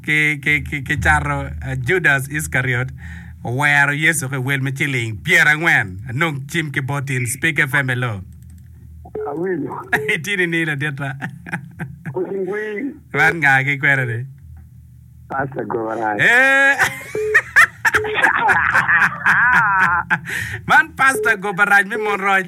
ki cato Judas Iskariot owero Yecu ki wel me ciling pyer angwen anong cim ki bot in Speak FM hello. Awinyo. Itye nining laditta? Pwony winy. Man nga ki kwena ni? Pastor Goran. Eh. Man Pastor Gobaraj me Monroc.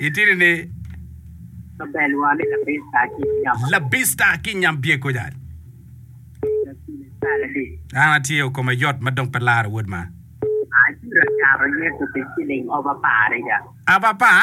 Itidi ni labista ki nyam bye kuca. An atye o koma yot ma dong pe laro wod ma. Aba pa.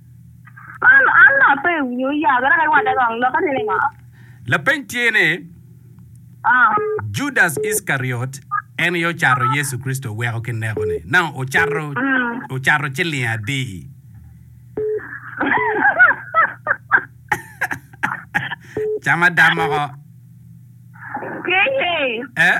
An an a pe winyo ya gara ka iwate kong loka tye ni ngo? Lapeny tye ni, Ah. Judas Iskariot en aye ocato Yecu Kricito weko ki neko ni? Nang ocato ocato ciling adi? Cam ada moko. Keye. Eh?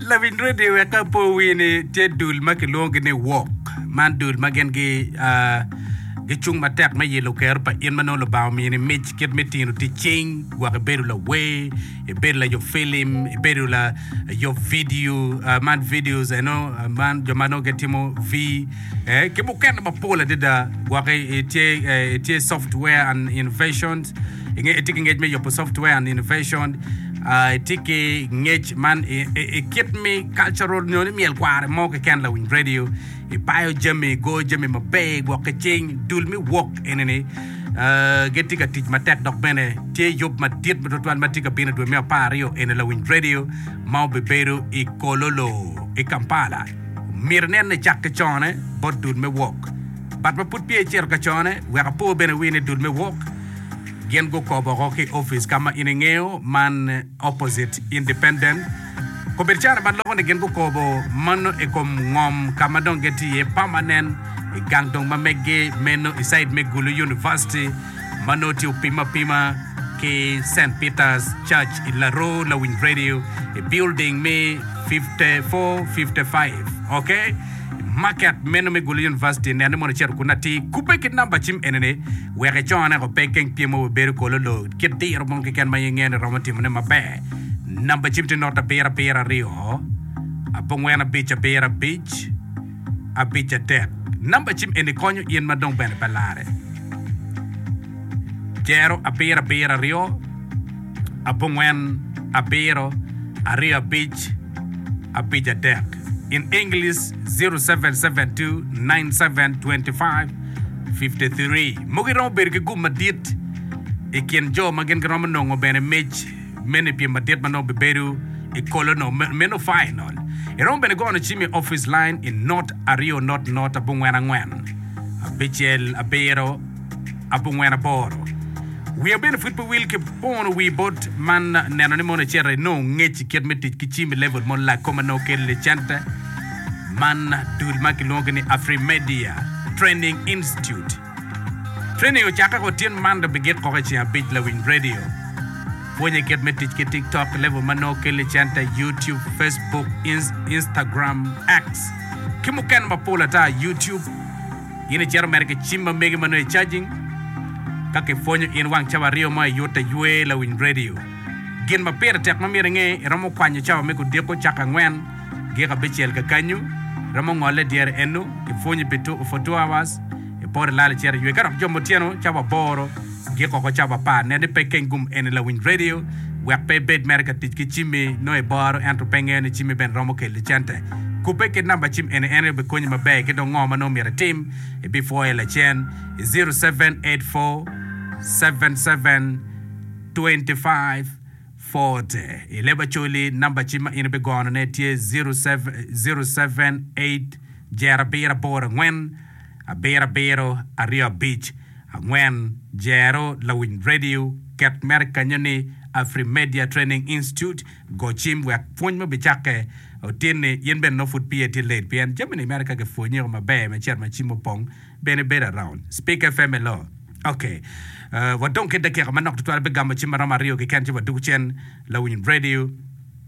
Lawiny redio wek ka po owinyo ni tye dul ma kilwongogi ni wok man dul ma gin gi ah, gicung matek me yelo kero pa in ma nongo Lubanga omiyo ni mic kit me tino tic cing gwok ibedo lawer, ibedo layub filim, ibedo layub vidio ah, man videos eno ah, man jo ma nongo gitimo V eh, ki mukene mapol adada gwok i- itye eh, itye software and innovations itye ki ngec me yubo software and innovation, ah, itye ki ngec man i, i, i kit me cultural nyo ni myel kware mo keken lawiny radio, ipayo jami, igo jami maber, igwok ki cing, dul me wok enini, ah, gitye ka tic matek dok bene tye yub madit tutwal ma tye ka bino i dwe me apar aryo eni lawiny radio ma obibedo i Kololo, i Kampala. Myero inen ni icak ki cone bot dul me wok. But ma pud peya icito ka cone, wek apo bene wi ni dul me wok, Gin gukobo oko ki opic ka ma in ingeyo man opposite independent kobedo caro ma loko ni gin gukobo mano i kom ngom ka ma dong gin tye iye permanent i gang dong ma meggi meno i side me Gulu University ma nongo tye opim apima ki Saint Peter's Church i Laro lawiny radio i building me 5455 ok market meno me Gulu University nene mono icito kunu atir kubbe ki namba cim eni ni Wek icone o pe geng timo wa bedo kolo lo kit diro mo keken ma in ingeyo ni romo timone maber. Namba cim tye not abiro abiro aryo abongwen abic abiro abic abic adek. Namba cim eni konyo in ma dong bene pe lare. Jero abiro abiro aryo abongwen abiro aryo abic abic adek. in English 0772972553. Mogo iromo bedo ki gum madit i kin jo ma gin giromo nongo bene mic meno i pyem madit ma nongo bibedo i kolo no meno final. Iromo bene gono cim i office line i not aryo not not abongwen angwen abicel abiro abongwen aboro. Wiya bene pud pe wil ki pono wii bot man neno ni mono ecito enongo ngec i kit me tic ki cim i level mo lako ma nongo kelo i center man dul ma kilwongo ni Afrimedia Training Institute. Training ocakke ko tyen man dong bigik koko i ceng abic lawiny radio. Pwonye kit me tic ki TikTok level ma nongo kelo i center, YouTube, Facebook, Instagram, X ki mukene mapol ata, YouTube, In icito mere ki cim ma megi ma nongo icajing. Ka kipwonyo in wang cawa aryo mo iyut te ywe lawiny redio. Gin ma pire tek ma myero inge, iromo kwanyo cawa me gudiko caka angwen giko abicel kakanyu, iromo ngole dyere eno, ipwonyi pi 24 hours, ipoto ilal icito iywe ka dok jomo otyeno cawa aboro. Giko ko cabo apar, nen ni pe keng gum eni lawiny redio wek pe ibed mere ka tic ki cimmi. Nongo iboro ento pe ingeyo ni cimmi bene romo kelli cente. Kubbe kit namba cim eni en aye obikonyi maber ki dong ngo ma nongo myero itim. Ibipwoye lacen i ziro seven eight four seven seven twenty five forty. I leb Acholi, namba cim ma in ibigonone tye ziro seven eight jerabiro aboro angwen. abirabiro aryo abic angwen jero lawiny radio ket mere kenyo ni Afrimedia Training Institute go cim wek pwony ma obicakke otinni in bene nongo pud piye tye late pien jami ni mere ka kipwonyi o maber me cit ma cim opong bene ibedo around Speak FM Hello Ok wadong ki dakika manok tutwal bigamo cim maromo aryo keken ci wadug cen lawiny radio.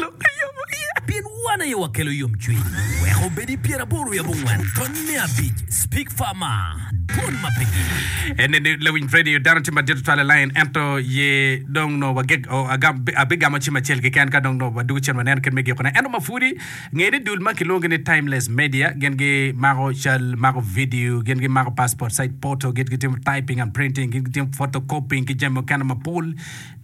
Lok a yomo iye. Pien wan aye wakelo yomcwiny. Wek obed i pyeraboro wiye abongwen, tony me abic, Speak Farmer, dwon ma pe gin. En eni Lawiny Freddy, dano tye madit tutwal i lain, ento ye dong nongo wageg, o, agam, abigamo cim acel keken ka dong nongo wadwogo cen waneno kit me gikone. Ento ma pwodi, nge ni dul ma kilwongo ni Timeless Media, gin gimako cal, mako vidio, gin gimako passport size photo, gin gitimo typing and printing, gin gitimo photocopying ki jami mukene mapol,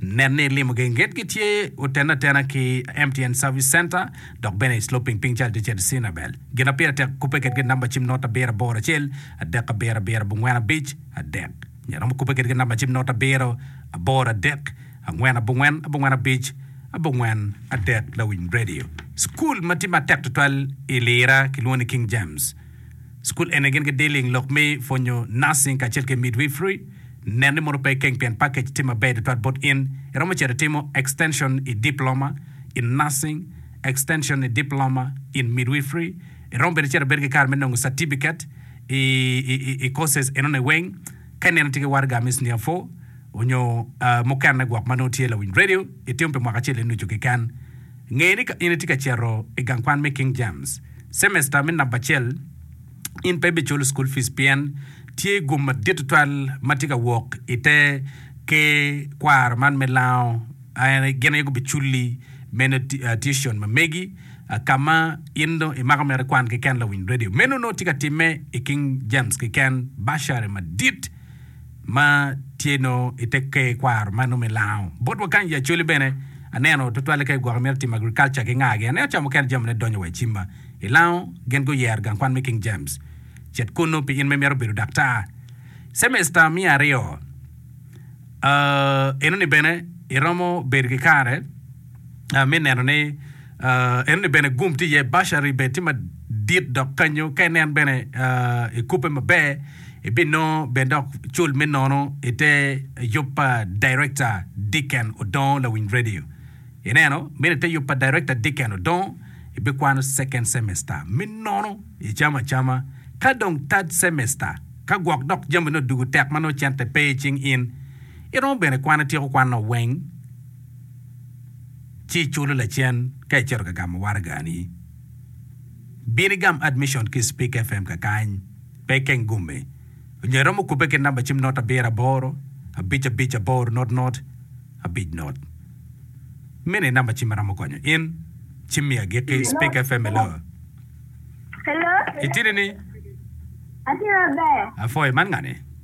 Nen ni ilimo geng gedo gitye otene atena ki MTN Service Center dok bene i Sloping piny cal dyecel i Cinabel. Gin ma pire tek kubbe kedgi namba cim not abiro aboro acel adek abiro abiro abongwen abic adek nyo iromo kubbe kedgi namba cim not abiro aboro adek angwen abongwen abongwen abic abongwen adek Lawinyradio. Cukul ma tye matek tutwal i Lira kilwongo ni King James. Cukul eni gin gidealing lok me pwonyo nursing kacel ki midwifery. Nen ni mono pe ikeng pien package tye maber tutwal bot in. Iromo cito itimo extension i Diploma in Nursing, Extension i Diploma in Midwifery. Iromo bene cito ibedo ki kare me nongo certificate i i courses enoni weng. Ka ineno tye ki waraga me Senior Four onyo mukene gwok ma nongo tye lawiny radio, itimo pi mwaka acel nucu keken. Nge ni ka in itye ka cito i gang kwan me King James cemesta me namba acel, in pe ibiculo cukul pic pien tye gum madit tutwal ma tye ka wok i te ker kwaro man me lango. Gin aye gubiculi meno tuition ma megi ka ma in dong imako mere kwan keken lawiny redio. Meno nongo tye ka timme i King James keken, bursary madit. ma tye nongo i te ker kwaro ma nongo me lango. Bot wakany i Acholi bene, aneno tutwalle ka i gwoko myero itimo agriculture ki ngagi. Aneno ca mukene jamine donyo wa i cimba. I lango, gin guyero gang kwan me King James. Cet kunnu pi in ma imito bedo daktar. Cemesta miya aryo, aa, enoni bene iromo bedo ki kare. me neno ni enoni bene gum tye iye, bursary bene tye madit dok kanyo ka inen bene ikube maber ibinongo bene dok cul me nono ite yub pa Director Dicken Odongo lawiny radio. Ineno, meno ite yub pa Director Dicken Odongo ibikwano second semester me nono icamo acama ka dong third semester ka gwok dok jami nongo dugu tek ma nongo cente pe icing in iromo bene kwano ityeko kwan nongo weng ci iculo lacen ka icito ka gamo waragani. Bin igam Admission ki i Speak FM kakany, pe ikeng gume, onyo iromo kubbe ki namba cim not abiro aboro, abic abic aboro not not, abic not. Meno aye namba cim ma romo konyo in. Ci mi agikki, Speak FM, Hello. Hello. Itidi ni? Atye maber. Apwoyo. Man ngani?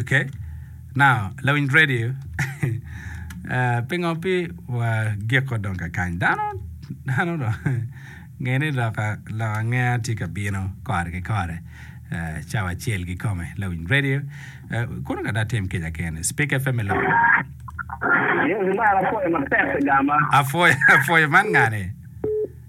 ok now lawiny radio pingo pe wagiko dong kakany dano dano dong nge ni loka lok angeya tye ka bino kore ki kore cawa acel kikome lawiny radio kono kadi atim kica kene speak fm i loka Yesu mara apwoyo matek igama. apwoyo apwoyo man ngane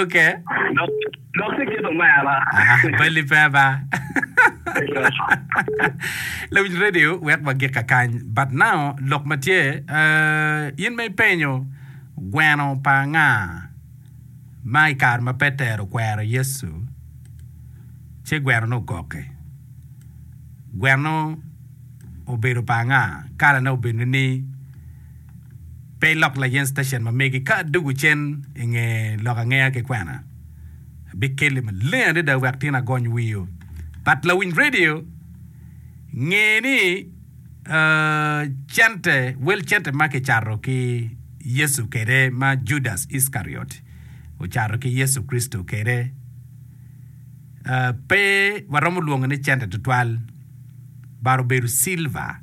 Oke. Dok ki kit omera. Bali pe ba. Lawinj radio wek wagik kakany. But now lok ma tye, eh, in ma ipenyo gweno pa anga ma i kare ma Petero okwero Yecu ci gwenone ogokke? Gwenno obedo pa anga? Kalane obedo ni? Pe ilok layen station ma megi ka adugu cen i nge lok angeya ki kwena. Abikeli maleng adada wek tin agony wiyo. But lawiny radio nge ni uh, cente, wel cente ma kicato ki Yesu kede ma Judas Iskariot ocato ki Yesu Kricito kede, uh, pe waromo lwongo ni cente tutwal, but obedo silver.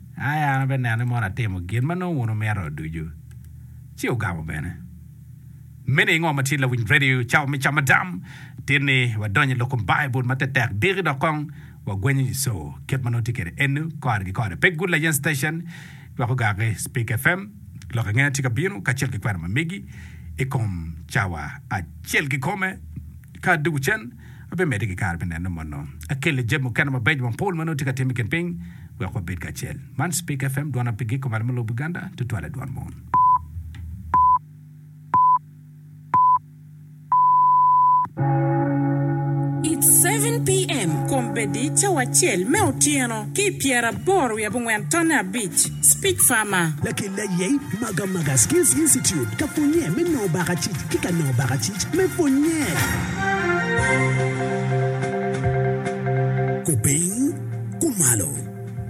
Aye an abinene mono atimo gin ma nongo wun wumito ducu, ci ogamo bene. Meno i ngo ma tye lawiny radio cawa me camadam? Tin ni wadonyo i lok kom Baibul ma tetek diki dok kong wagwenyo nyiso kit ma nongo tye kwede enu kore ki kore. Pe Good Layen Station gwoko gar ki Speak FM. Lok angeya tye ka bino kacel ki kwena ma megi i kom cawa acel kikome ka dwogo cen. Abimedde ki kare me neno mono. Akelle jami mukene mabeco mapol ma nongo tye ka tim i kin piny wek wabed kacel. Man Speke FM, dwon apigi kumalo me lobo Buganda, tutwale dwon mon. It seven PM, Kombeddi cawa acel me otyeno ki i pyeraboro wiye abongwen tonne abic. Speak Farmer. Lakelli aye i Maga Maga Skills Institute ka pwonnye me nongo baka cic ki ka nongo baka cic me pwonnye. Kupiny, kumalo,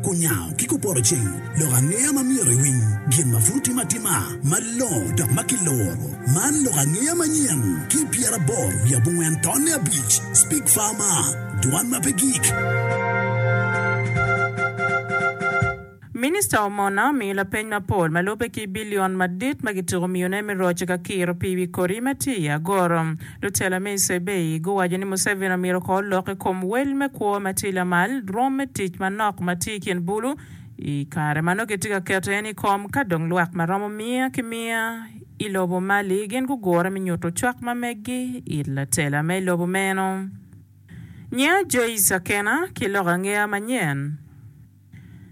kunyawo ki kupoto ceng lok angeya ma myero iwiny gin ma pud otime atima malongo dok ma kiluro. Man lok angeya manyen ki pyeraboro wiye abongwen tonne abic. Speak Farmer, Dwan ma pe gik. Minista Omona omiyo lapeny mapol ma lubbe ki bilion madit ma kityeko miyone me roco ka kiro pii wi kodi ma tye i agoro. Lutela me i Sebei guwaco ni Museveni omyero ko olok i kom wel me kwo ma tye lamal rwom me tic manok ma tye i kin bulu i kare ma nongo kitye ka keto en i kom ka dong lwak ma romo miya ki miya i lobo mali gin gugure me nyuto cwak ma meggi it latela me lobo meno. Nyinga Joyce Akena, ki loko angeya manyen.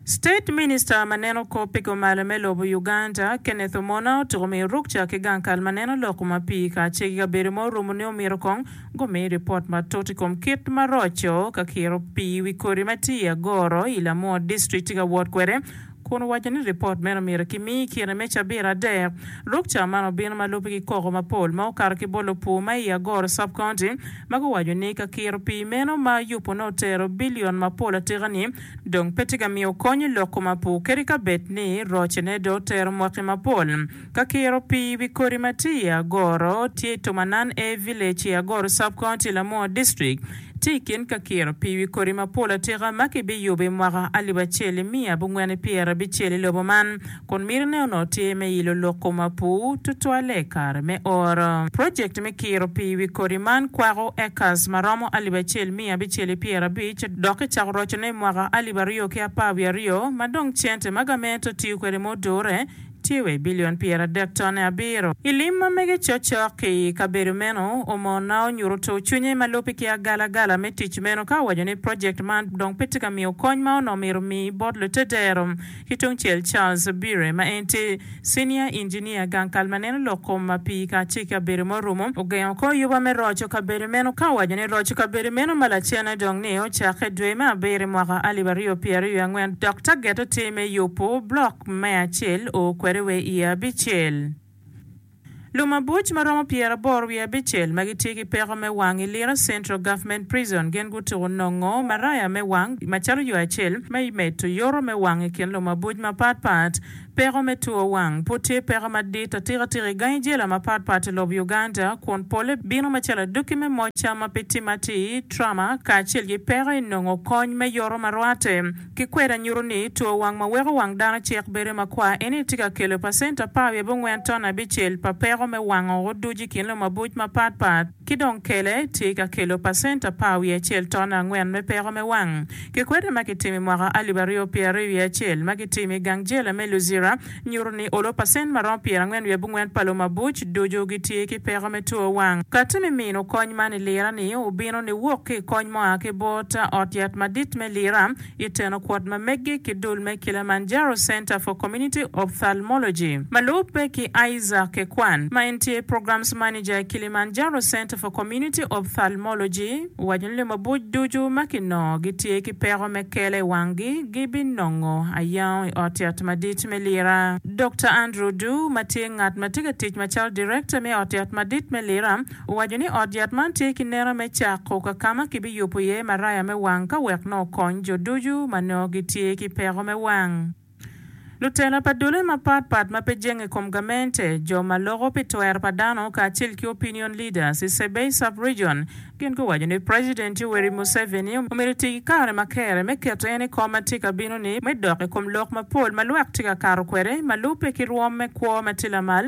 State Minister ma neno kop pi kumalo me lobo Uganda, Kenneth Omona otuko miyo rukca ki gang kal ma neno lok ma pii kacel ki kabedo ma orumo ni omyero kong gumi ripot matut i kom kit ma roco ka kiro pii i wi kodi ma tye i Agoro i Lamua District tye ka wot kwede kun owaco ni ripot meno myero ki mi i kine me cabit adek. Rukca man obino ma lubbe ki koko mapol ma okato ki bolo pur ma i Agoro Sub-County ma guwaco ni ka kiro pii meno ma yubone otero bilion mapol atika-ni dong pe tye ka miyo kony i lok koma pur kadi ka bed ni rocene dong otero mwaki mapol. Ka kiro pii wi kodi ma tye i Agoro tye i Tomanan A Village i Agoro Sub-County, Lamuo District. Tye i kin ka kiro pii wi kodi mapol atika ma kibiyubo i mwaka alip acel nimiya abongwen nipyer abicel i lobo man. kun mitine onongo tye me ilo lok kom apur tutwalle i kare me oro. Projekt me kiro pii i wi kodi man kwako acres ma romo alip acel miya abicel ki pyera abic dok kicako rocone i mwaka alip aryo ki apar wiye aryo ma dong cente ma gament otiyo kwede ma odure tye wa i bilion pyera adek tone abiro. I lim ma mege cokcok ki i kabedo meno, Omona onyuto tur cwinye ma lubbe ki agalagala me tic meno ka owaco ni projekt man dong pe tye ka miyo kony ma onongo myero omi bot lutedero. Ki tungcel, Charles Beere, ma en tye cinia injinia gang kal ma neno lok kom ma pii kacel ki abedo ma orumo, ogengo kor yuba me roco kabedo meno ka owaco ni roco kabedo meno ma lacenne dong ni ocakke dwe me abiro i mwaka alip aryo pyera ryo angwen dok taget-te me yubo blok me acel o kwede wa i abicel. Lumabuc ma romo pyeraboro wiye abicel ma gitye ki peko me wang i Lira Central Government Prison gin gutuku nongo maraya me wang macalo yo acel me medo yoto me wang i kin lumabuc mapat pat. Peko me two wang pud tye peko madit atika tika i gangi jela mapat pat i lobo Uganda kun pole bino macalo adwoki me moca ma pe timme atir, trauma, kacel ki peko i nongo kony me yoto ma rwatte. Ki kweda nyuto ni two wang ma weko wang dano cek bedo makwar eni tye ka kelo pacent apar wiye bongwen ton abicel pa peko me wango oduc i kin lumabuc mapat pat ki dong kele tye ka kelo pacent apar wiye acel ton angwen me peko me wang. Kikweda ma kitimo i mwaka alip aryo pyeraryo wiye acel ma kitimo i gang jela me Luzira, nyuto ni olo pacent ma romo pyerangwen wiye abongwen pa lo mabuc ducu gitye ki peko me two wang. Kati me mino kony man i lira ni obino ni wok ki i kony mua ki bot ot yat madit me lira i teno kwot ma meggi ki dul me Kilimanjaro Center for Community Ophthalmology ma lubbe ki Isaac Kekwan ma en tye Programs Manager i Kilimanjaro Center for Community Ophthalmology. Owaco ni lumabuc ducu ma kinongo gitye ki peko me kelo i wanggi gibinongo ayango i Ot Yat Madit me Lira. Dokta Andrew Du, ma tye ngat ma tye ka tic macalo Direkta me Ot Yat Madit me Lira, owaco ni ot yat man tye ki neno me cako ka ka ma kibiyubo iye maraya me wang ka wek nongo okony jo ducu ma nongo gitye ki peko me wang. Lutela pa dole mapat pat ma pe jenge i kom gamente, jo ma loko pi twer pa dano kacel ki opinion leaders i Sebei Sub-Region gin guwaco ni President Yoweri Museveni omyero oti ki kare ma kere me keto en i kom ma tye ka bino ni me dok i kom lok mapol ma lwak tye ka kato kwede ma lubbe ki rwom me kwo ma tye lamal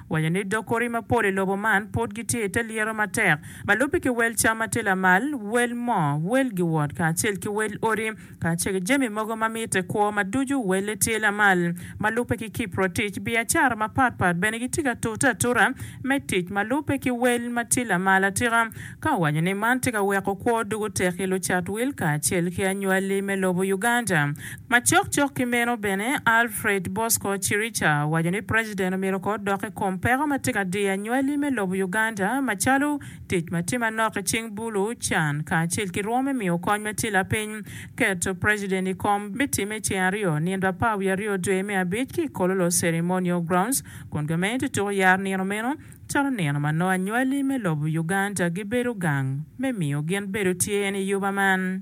Waco ni dog kori mapol i lobo man pud gitye i te lyero matek ma lubbe ki wel cam ma tye lamal, wel moo, wel giwot kacel ki wel odi kacel ki jami mogo ma mitte kwo ma ducu welle tye lamal. Ma lubbe ki kipro tic, biacara mapatpat bene gitye ka tute atura me tic ma lubbe ki wel ma tye lamal atika. ka owaco ni man tye ka weko kwo dok otek i lucat wil kacel ki anywali me lobo Uganda. Macok cok ki meno bene, Alfred Bosco Chirica owaco ni president omyero oko odok i kom peko ma tye ka diyo anywali me lobo Uganda macalo tic ma tye manok i cing bulu, can kacel ki rwom me miyo kony ma tye lapiny. Keto president i kom bitimme i ceng aryo nino apar wiye aryo dwe me abic ki i Kololo Ceremonial Grounds kun gamente tuko yaro nino meno. Calo nino ma nongo anywali me lobo Uganda gibedo gang me miyo gin bedo tye en i yuba man.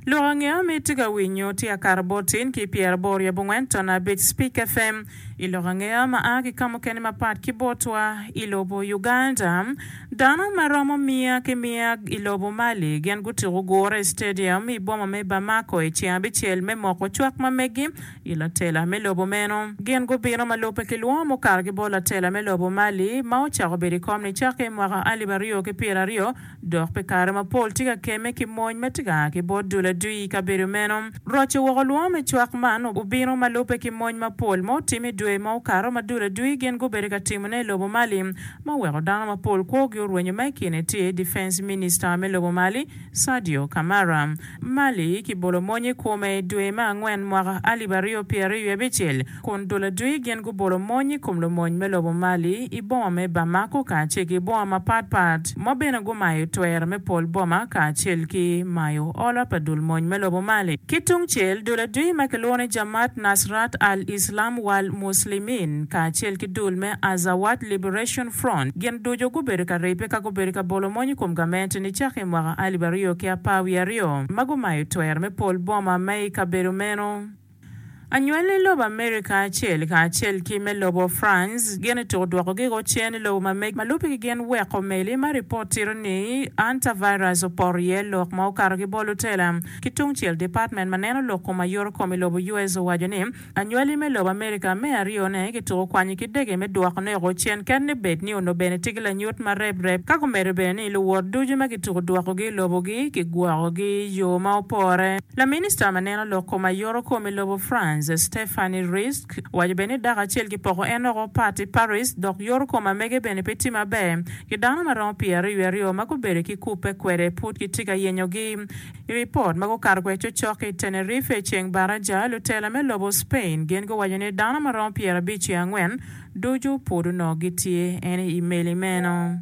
Lok angea ma itye ka winyo tye akato bot tin ki pyeraboro i abongwen tona abic Spik FM i lok angea ma a ki kamukene mapat ki botwa i lobo Uganda. Dano ma romo miya ki miya i lobo Mali gin gutuko gure i stadium i boma me Bamako i ceng abicel me moko cwak ma megi I latela me lobo meno, gin gubino ma lubbe ki lwongo mukato ki bot latela me lobo Mali ma ocako bedo i kom-ni cakke i mwaka alip aryo ki pyera aryo dok pi kare mapol tye ka kemme ki mony ma tye ka a ki bot dul adui i kabedo meno. Roco woko lwongo me cwak man obino ma lubbe ki mony mapol ma otime i dwe ma okato ma dul adui gin gubedo ka timone i lobo Mali ma oweko dano mapol kwogi orwenyo ma i kine tye Defence Minister me lobo Mali, Sadio Camara, Mali kibolo mony i kome i dwe me angwen mwaka alip aryo pyeraryo wiye abicel, kun dul adui gin gubolo mony i kom lumony me lobo Mali i boma me Bamako kacel ki boma mapat pat ma bene gumayo twer me pol boma kacel ki mayo olo pa dul mony me lobo Mali. Ki tung cel, dul adui ma kilwongo ni Jamaat Nasrat al-Islam wal Muslimin kacel ki dul me Azawad Liberation Front, gin ducu gubedo ka ribbe ka gubedo ka bolo mony i kom gamente-ni cake i mwaka alip aryo ki apar wiye aryo ma gumayo twer me pol boma ma i kabedo meno. Anywalli lobo Amerika acel kacel ki me lobo France gin otuko dwoko gigo cen i lobo ma mege ma lubbe ki gin weko meli ma ripot tito ni antivirus opoto iye lok ma okato ki bol lutela ki tungcel Department ma neno lok kom ayoto kom i lobo US owaco ni Anywali me lobo Amerika me aryone kituko kwanyi ki dege me dwoko neko cen ket ni bed ni onongo bene tye ki lanyut ma rep rep ka gumedo bene ni luwot ducu ma kituko dwokogi i lobogi kigwokogi i yo ma opore. Laminista ma neno lok kom aye oro kom i lobo France, Stephanie Rijsk, owaco bene ni dako acel kipoko en oko pat i Paris dok yoro kom amege bene pe tye maber ki dano ma romo pyeraryo aryo ma gubedo ki kubbe kwede pud kitye ka yenyogi. I ripot ma gukato kwede cokcok i Tenerife i ceng baraja, lutela me lobo Spain gin guwaco ni dano ma romo pyerabic ki angwen ducu pud onongo gitye eni i meli meno.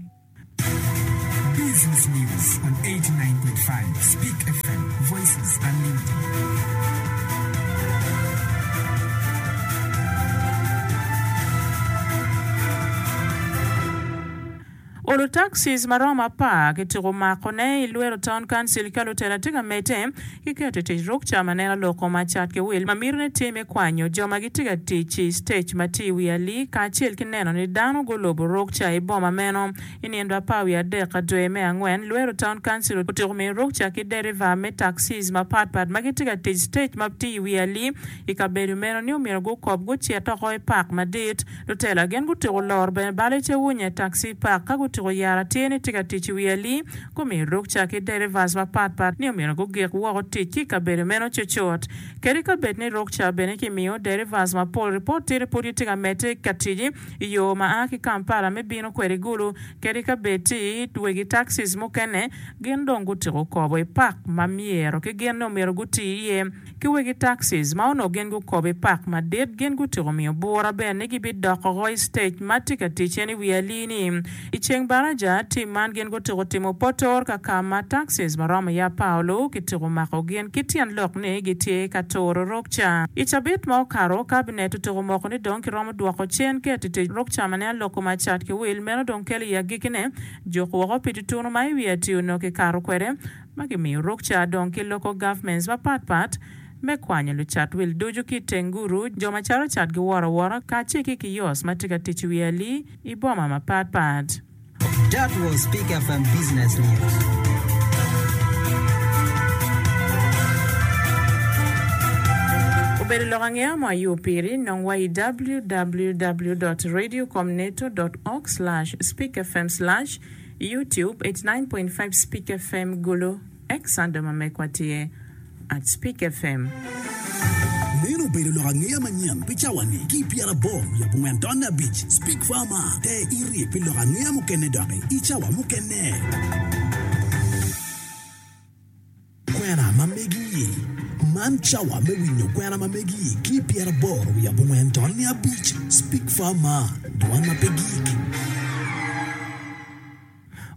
Olu taxis maromo apar ki tuku mako ne i lwero town council ka lutela tye ka mete ki keto i tic ruk ca ma neno loko ma cat ki wil ma mito ne tye me kwanyo jo ma gitye ka tic i stage ma tye i wi ali kacel ki neno ni dano gulubu ruk ca i boma meno i nino apar wiye adek ka dwe me angwen lwero town council otyeko miyo ruk ca ki deriva me taxis ma pat pat ma gitye ka tic stage ma tye i wi ali i kabedo meno ni omyero gukob gucit oko i park madit Lutela gin gutyeko loro bene bal i te wunye taxi park ka gutyeko yero atir ni tye ka tic i wi ali, gumiyo rukca ki derivas mapat pat ni omyero gugik woko tic ki i kabedo meno cucut. Kadi ka bed ni rukca bene kimiyo derivas mapol, ripot tiri pud gitye ka medde ka tic i yo ma a ki Kampala me bino kwede Gulu kadi ka bed ti wegi taxis mukene gin dong gutyeko kobo i park ma myero ki gin ni omyero guti iye. ki wegi taxis ma onongo gin gukobo i pak madit gin gutyeko miyo bura bene ni gibidok woko i sitec ma tye ka ticen i wi alii-ni. I ceng baraja, tim man gin gutyeko timo potor ka ka ma taxis ma romo iye apaolo kityeko mako gin ki tyen lok ni gitye ka turo rukca. I cabit ma okato, kabinet otyeko moko ni dong kiromo dwoko cen ket i tic rukca ma ne aloko ma cat ki wil meno dong kelo i agikine. Juk woko pi tutunu ma i wi atii onongo kikato kwede, ma gimiyo rukca dong ki local governments mapat pat me kwanyo lucat wil ducu ki i teng guru, jo ma caro cat giworo awora, kacel ki kiosk ma tye ka tic i wi ali i boma mapat pat. That was Peak FM Business News. Obedo lok angeya mo aye opiri, nong wa i www dot radio com neto dot org slash speakfm slash. Youtube eighty nine point five Speak FM Gulu, X Sando ma megwa tye at Speak FM. Meno obedo lok angeya manyen pi cawani ki pyera aboro lib ongwen tonne abic. Speak Farmer, Te iri pi lok angeya mukene doki i cawa mukene. Kwena ma megi-i, Man cawa me winyo kwena ma megi-i ki i pyeraboro wiye abongwen tol niya abic, Speak Far Mar, Dwan ma pe Gik.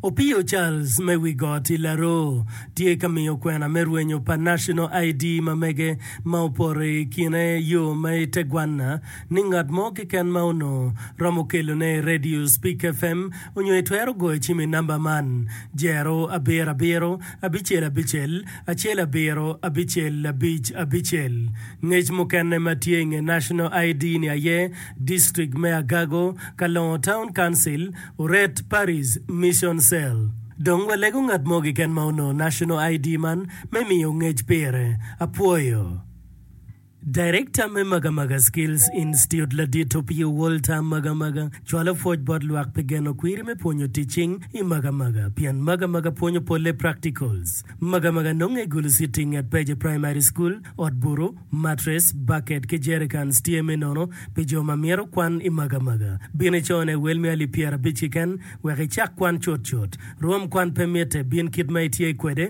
Opiyo Charles me Wi Got i Laroo tye ka miyo kwena me rwenyo pa National ID ma mege ma opore i kine yo ma i tegwanna ni ngat mo keken ma onongo romo kelone i Radio Speak FM onyo itwero goyo cim i namba man, Jero abiro abiro. Abicel Abicel, acel abiro, abicel abic abicel. Ngec mukene ma tye i nge National ID ni aye, District me Agago, Kalongo Town Council, Oret Parish, Mission Cell. Dong walego ngat mo keken ma onongo National ID man me miyo ngec pire. Apwoyo. Darekta me Magamaga Skills Institute ladit Opio Walter Magamaga cwalo pwoc bot lwak pi geno kwiri me pwonyo tic cing i Magamaga pien Magamaga pwonyo polle practicals. Magamaga nonge i gulu city nget Peje Primary School, ot butu, mattress, bucket ki jerrycans tye me nono pi jo ma myero kwan i Magamaga. Bin i cone wel me alip pyerabic kiken wek icak kwan cutcut. Rwom kwan pe mitte, bin kit ma itye kwede.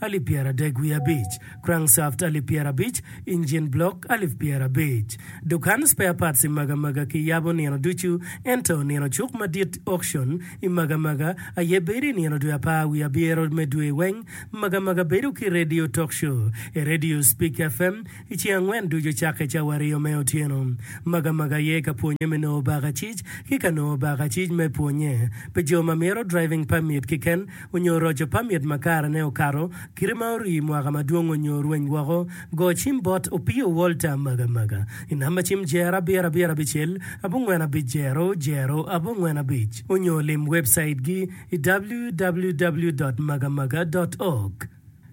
alip pyeradek wiye abic, crankshaft alip pyerabic, engine block alip pyerabic. Dukan spare parts i Magamaga kiyabo nino ducu, ento nino cuk madit, auction, i Magamaga aye bedo i nino dwe apar wiye abyero me dwe weng. Magamaga bedo ki radio talk show i radio Speak FM i ceng angwen ducu cakke cawa aryo me otyeno. Magamaga aye ka pwonye me nongo bakacic ki ka nongo bakacic me pwonye pi jo ma mito driving permit kiken. onyo roco pamit ma kare ne okato, kite ma orii mwaka madwong onyo rweny woko, go cim bot opio Walter Maga Maga i namba cim jer abiro abiro abicel abongwen abic jero jero abongwen abic onyo lim webcait gi i www dot magamaga dot org.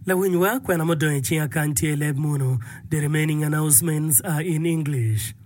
Lawinywa, kwena mudong i cing akany tye i leb munu, The remaining announcements are in English.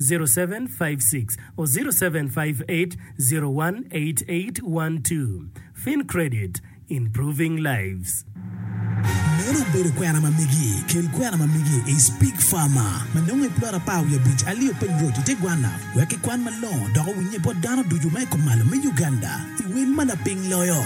0756-07580188812 FinCredit, Improving Lives. Meno obedo kwena ma megi. Kel kwena ma megi i Speak Farmer ma nongo i plot apar wiye abic Alio Peng Road i te gwanna wek kikwan malongo dok owinnye bot dano ducu ma i kom malo me Uganda i wel ma laping loyo.